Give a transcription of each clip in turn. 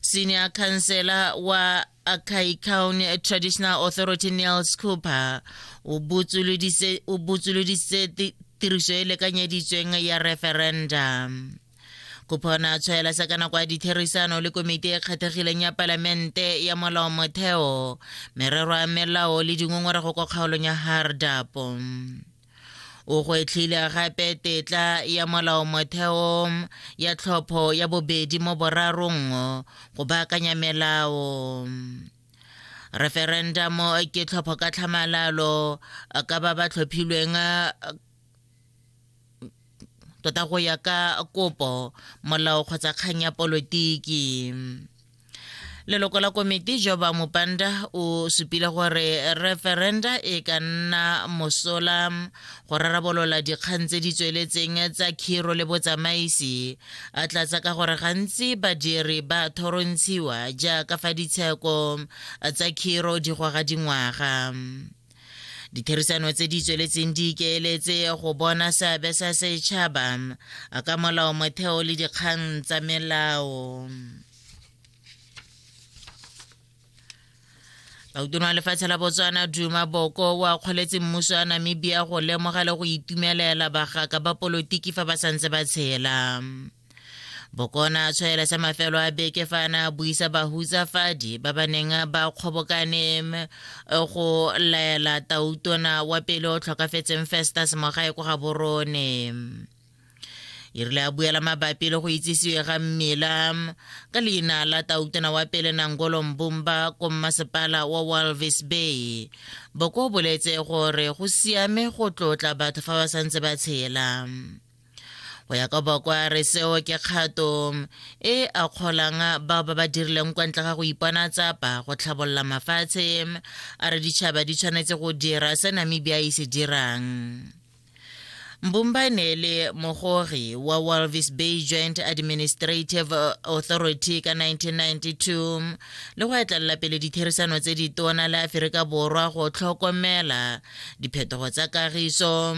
senior councillor wa Akai County Traditional Authority Niels Cooper o botsoloditse tiriso e lekanyeditsweng ya referendum kopona tshwaela sa ka nako ya ditherisano le komiti e kgethegileng ya palamente ya molao motheo merero ya melao le dingongorego kwa kgaolong ya hardapo o gwetlhile gape tetla ya molaomotheo ya tlhopho ya bobedi mo borarong go baakanya melao referendum ke tlhopho ka tlhamalalo ka ba ba tlhophilweng tota go ya ka kopo molao kgotsa kgang ya polotiki leloko la komiti joba mopanda o supile gore referenda e ka nna mosola go rarabolola dikgang tse di tsweletseng tsa khiro le botsamaisi a tlatsa ka gore gantsi badiri ba thorontshiwa jaaka fa ditsheko tsa khiro di goga dingwaga ditherisano tse di tsweletseng di ikeeletse go bona seabe sa setšhaba ka molao motheo le dikgang tsa melao lautona wa lefatshe la botswana duma boko wa kgoletse mmuso wa namibia go lemoga le go itumelela bagaka ba polotiki fa ba santse ba tshela bokona a tshwaela sa mafelo a beke fa a ne a buisa bahutsafadi ba ba neng ba kgobokane go laela tautona wa pele o tlhokafetseng festus mogae ko ga borone e rile a buela mabapi le go itsisiwe ga mmila ka leina la tautona wa pele nangolo mbumba ko mmasepala wa walvis bay boko boletse gore go siame go tlotla batho fa ba santse ba tshela go ya ka bokwa re seo ke kgato e a kgolang bao ba ba dirileng kwa ntle ga go ipona tsapa go tlhabolola mafatshe a re ditšhaba di tshwanetse go dira se namibia e se dirang mbumbane le mogogi wa walvis bay joint administrative authority ka 1992 le go etlelela pele ditherisano tse ditona le aferika borwa go tlhokomela diphetogo tsa kagiso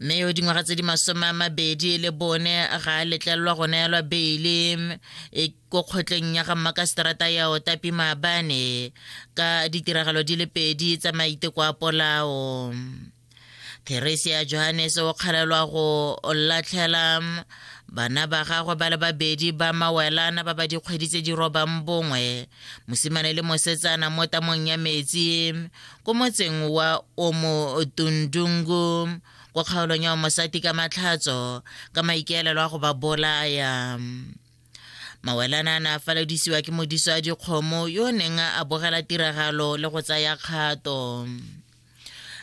mme yo dingwaga tse di masome a mabedi le bone ga a letlelelwa go neelwa beile e ko kgotleng ya ga mmakaseterata ya otapi maabane ka ditiragalo di le pedi tsa maiteko a polao theresia johannes o kgalelwa go latlhela bana ba gagwe ba le babedi ba mawelana ba ba dikgwedi tse di robang bongwe mosimane le mosetsana mo tamong ya metsi ko motseng wa omotundungu ko kgaolong ya omosati ka matlhatso ka maikaelelo a go ba bolaya mawelana a ne a faledisiwa ke modiso a dikgomo yo o neng a bogela tiragalo le go tsaya kgato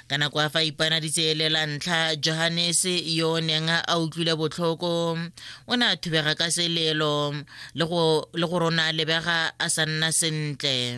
ka nako a fa ipana ditseelela ntlha johannes yo o neng a utlwile botlhoko o ne a thubega ka selelo le go rona lebega a sa nna sentle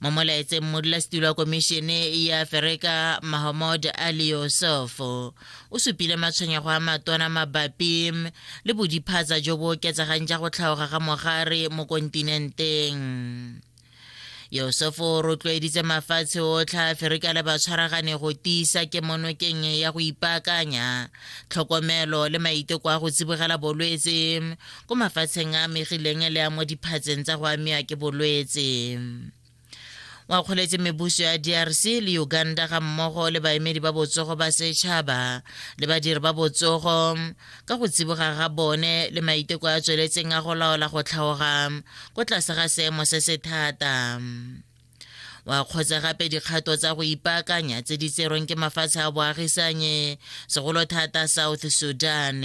mo molaetseng modulasetilo wa komišene ya aferika mahamod ali yosef o supile matshwenyego a matona mabapi le bodiphatsa jo bo oketsegang ja go tlhaoga ga mogare mo kontinenteng yosefo o rotloeditse mafatshe otlhe a aferika le batshwaragane go tiisa kemonokeng ya go ipaakanya tlhokomelo le maiteko a go tsibogela bolwetse ko mafatsheng a amegileng le a mo diphatseng tsa go amiwa ke bolwetse o akgoletse mebuso ya drc le uganda ga mmogo le baemedi ba botsogo ba setšhaba le badiri ba botsogo ka go tsiboga ga bone le maiteko a tsweletseng a go laola go tlhaoga ko tlase ga seemo se se thata wa kgotsa gape dikgato tsa go ipaakanya tse di tserweng ke mafatshe a boagisanye segolo thata south sudan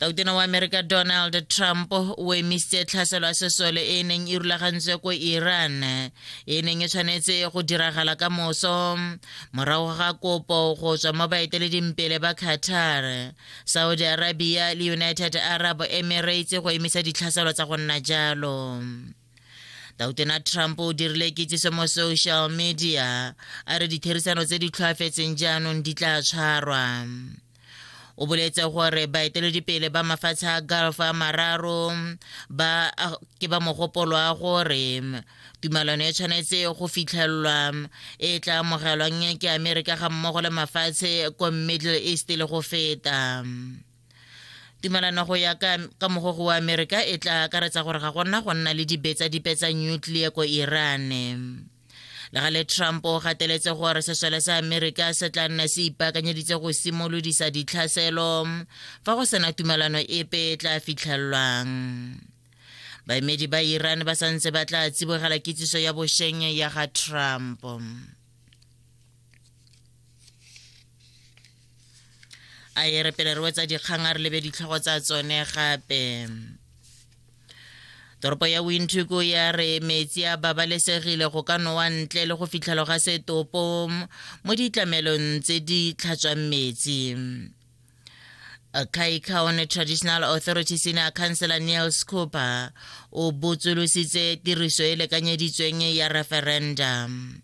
kautona wa amerika donald trump o emisitse tlhaselo ya sesole e e neng e rulagantswe ko iran e e neng e tshwanetse go diragala ka moso morago ga kopo go tswa mo baeteledimpele ba qatar saudi arabia le united arab emirates go emisa ditlhaselo tsa go nna jalo tautona trump o dirile kitsiso mo social media a re ditherisano tse di tlhoafetseng jaanong di tla tshwarwa o boletse gore baeteledipele ba mafatshe a gulf a mararo ba ke ba mogopolo wa gore tumalano e tshwanetse go fitlhelelwa e tla amogelwang ke amerika ga mmogo le mafatshe ko middle east le go feta tumalano go ya ka, ka mogogo wa amerika e tla akaretsa gore ga gona go nna le dibetsa dipe tsa nuclear ko iran le gale trump o gateletse gore sesole sa amerika se tla nna se ipaakanyeditse go simolodisa ditlhaselo fa go sena tumelano epe e tla fitlhelwang baemedi ba iran ba santse ba tla tsibogela kitsiso ya bosheng ya ga trump a e re pele re wetsa dikgang a re lebe ditlhogo tsa tsone gape toropo ya windhoek ya re metsi a babalesegile go ka nowa ntle le go fitlhelo ga setopo mo ditlamelong tse di tlhatswang metsi Kai County Traditional Authority Senior Councilor Neil Scooper o botsolositse tiriso e lekanyeditsweng ya referendum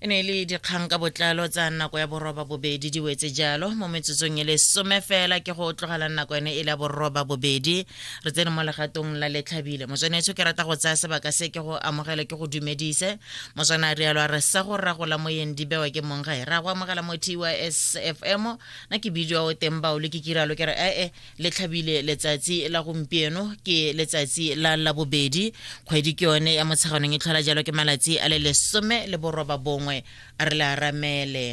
e ne e le dikgang ka botlalo tsa nako ya boroba bobedi di wetse jalo mo metsotsong e le some fela ke go tlogela nako ene e le ya boroba bobedi re tsene mo legatong la letlhabile motswanetsho ke rata go tsaya sebaka se ke go amogele ke go dumedise motswana a rialo a re sa go ragola moyeng di bewa ke mong ga e ra go amogela mo tys fm na ke bidio o teng baolo ke kiralo ke re ee le tlhabile letsatsi la gompieno ke letsatsi la labobedi kgwedi ke yone ya motsheganong e tlhola jalo ke malatsi a le lesome le boroba bongwe re le aramele